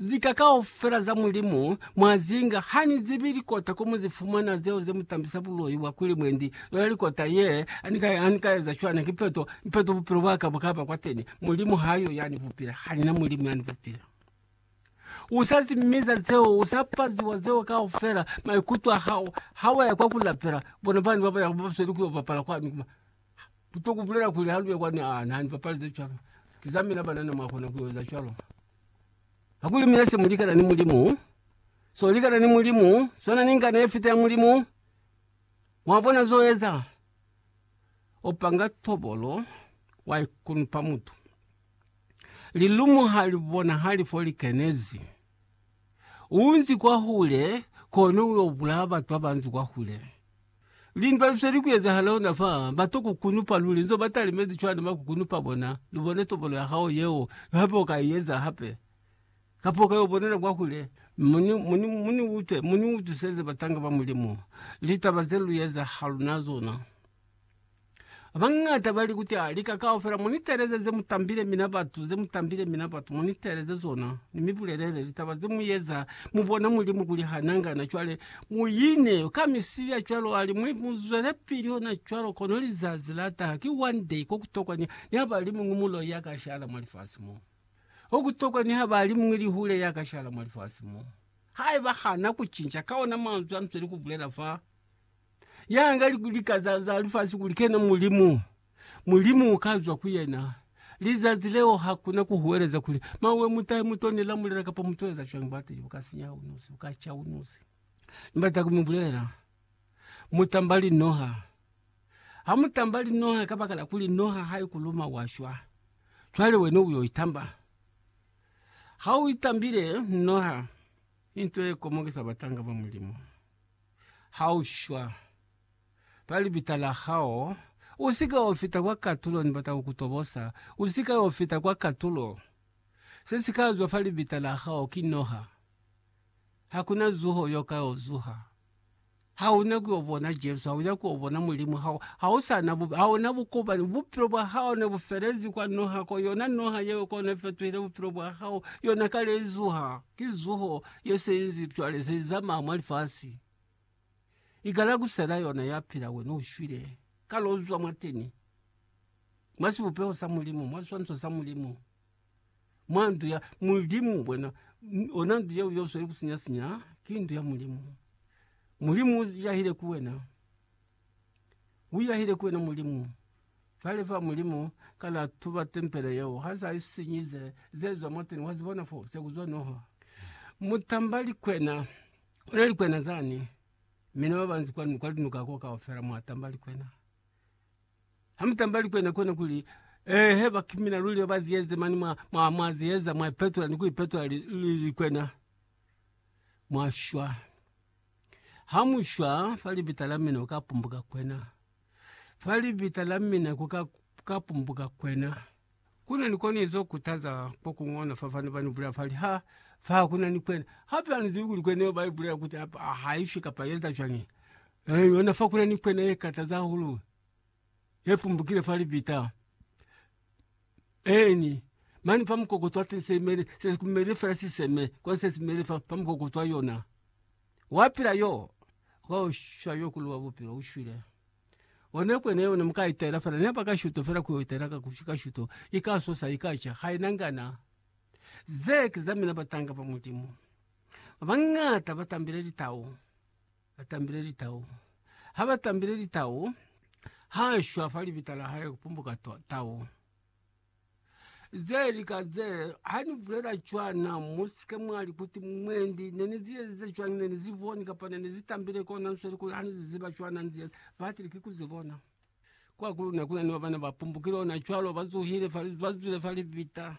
Lika kaufela za Mulimu mwazinga hanizibi likota komuzifumana zeo zemutambisa buloi bwa kuli mwendi yona likota ye, hanikaeza cwana ki peto, ni peto bupilo bwaka bukaba kwateni. Mulimu hayo yanibupile, hanina Mulimu yanibupile. Usazimiza zeo, usapaziwa zeo kaufela, maikuto ahao hawaya kwa kulapela bona bana babayaho babasweli kuyo bapala kwanu kuma. Kuto kubulela kuli haluya kwani aa na nibapalize cwalo, ki za mina banana mwakona kueza cwalo. Kakuli mina se mulikana ni Mulimu, so likana ni Mulimu, sona ni ngana ye fita ya Mulimu. Mwabona zo eza? O panga tobolo, wa ikunupa mutu. Lilumu ha li bonahali fo li kenezi. Unzi kwahule, kono uyo bulaya batu abanzi kwahule. Lindwa lu se li kuezahala hona fa, ba to kukunupa luli, nzo ba talimezi cwani ba kukunupa bona, lu bone tobolo ya hao yeo, hape u ka i eza hape. Kapa u ka yo bonela kwa hule, mu ni, mu ni, mu ni utwe, mu ni utwiseze batanga ba Mulimu, litaba ze lu eza ha luna zona. Bañata bali kuti a lika kaufela muniteleze ze mutambile mina batu, ze mutambile mina batu, muniteleze zona, ni mi bulelele litaba ze mueza mu bona Mulimu kuli ha nangana. Cwale muine ka misibi ya cwalo ali, mu, mu zwelepili hona cwalo, kono lizazi la taha ki one day ko kutokwa ni, ni ha bali muñwi muloi ya ka shala mwa lifasi mo. Ko kutokwa ni ha bali muñwi lihule ya ka shala mwa lifasi mo. Haiba hana kucinca ka ona manzwi a nzweli kubulela fa, Yanga lika za, za lifasi kuli kena Mulimu. Mulimu ukazwa ku yena. Lizazi leo hakuna kuhuweleza kuli mawe mutahe mutoni lamulela kapa mutueza cwani bwateli bukasinya unusi, bukacha unusi. Nibata kumibulela, mutamba linoha. Hamutamba linoha kabakala kuli noha haikuluma washwa. Cwale wena uyo itamba. Ha uitambile noha, into ye komokisa batanga ba Mulimu. ha u shwa, ba libita la hao, u si ka yo fita kwa katulo, ni bata ku ku tobosa, u si ka yo fita kwa katulo. Se si ka zwa fa libita la hao ki noha. Ha ku na zuho yo ka yo zuha. Ha u na ku yo bona Jesu, ha u na ku yo bona Mulimu, ha, ha u sa na bu, ha u na bukopani. Bupilo bwa hao ne bu felezi kwa noha ko, yona noha yeo ko ne fetuhile bupilo bwa hao, yona kale i zuha. Ki zuho ye seizi cwale ze zamaa mwa lifasi. I kala ku sena yona ya pila. Wena u shwile. Ka lo zwa mwateni, mwa sibupeho sa Mulimu, mwa siswaniso sa Mulimu, mwa ndu ya Mulimu. Wena, yona ndu yeo ye u sweli ku sinya-sinya, ki ndu ya Mulimu. Mulimu u yahile ku wena. U yahile ku wena Mulimu. Cwale fa Mulimu ka la tuba tempele yeo, ha sa i sinyize, ze zwa mwateni, wa zibona fo, se ku zwa noha. Mutamba likwena, ona likwena zani, mina ba banzi kwanu, kwa linuka ko kaufela mwa tamba likwena. Ha mu tamba likwena kona kuli, Eehe bakimina luli ba ba ziyeze mani, mwa, mwa, mwa ziyeza, mwa ipetola ni ku ipetola li, li, likwena, mwa shwa. Ha mu shwa fa libita la mina ku ka pumbuka kwena, fa libita la mina ku ka, ku ka pumbuka kwena. Ku na ni koni zo kutaza ko kuñwi ona fa fani ba ni bulela fa li, Ha, fa ku na ni kwena. Hape ha ni zibi kuli kwena yeo ba i bulela kuti ha i shwi kapa i eza cwañi. Eyi, ona fa ku na ni kwena ye kataza hahulu. ye pumbukile fa libita eni mane fa mukokotwa wa teng se imele se kumele fela siseme kwa se simele fa pa mukokotwa wa yona wa pila yo ho shwa yo kulu wa bupilo ushwile. One kwene yo ne muka itela fela ne paka shuto fela ku itela ka kushika shuto ika sosa ika cha ha ina ngana ze kiza mina batanga pa mulimu. Ba bangata ba tambile litau. Ba tambile litau. Ha ba tambile litau, ha shwa fa libita la hae ku pumbuka tau. Ze lika ze, ha ni bulela cwana, mu si ke mwa li kuti, Mwendi, ne ni zi ezize cwañi? Ne ni zi boni, kapa ne ni zi tambile kona nsweli kuli ha ni zi ziba cwana ni zi eza. Batile ki ku zi bona. Kwahahulu ne ku na ni ba ba ne ba pumbukile ona cwalo, ba zuhile, ba zwile fa libita.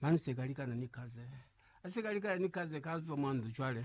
Mani sekalikana ni kaze. Asekalikana ni kaze kazwa mwanzo cwale.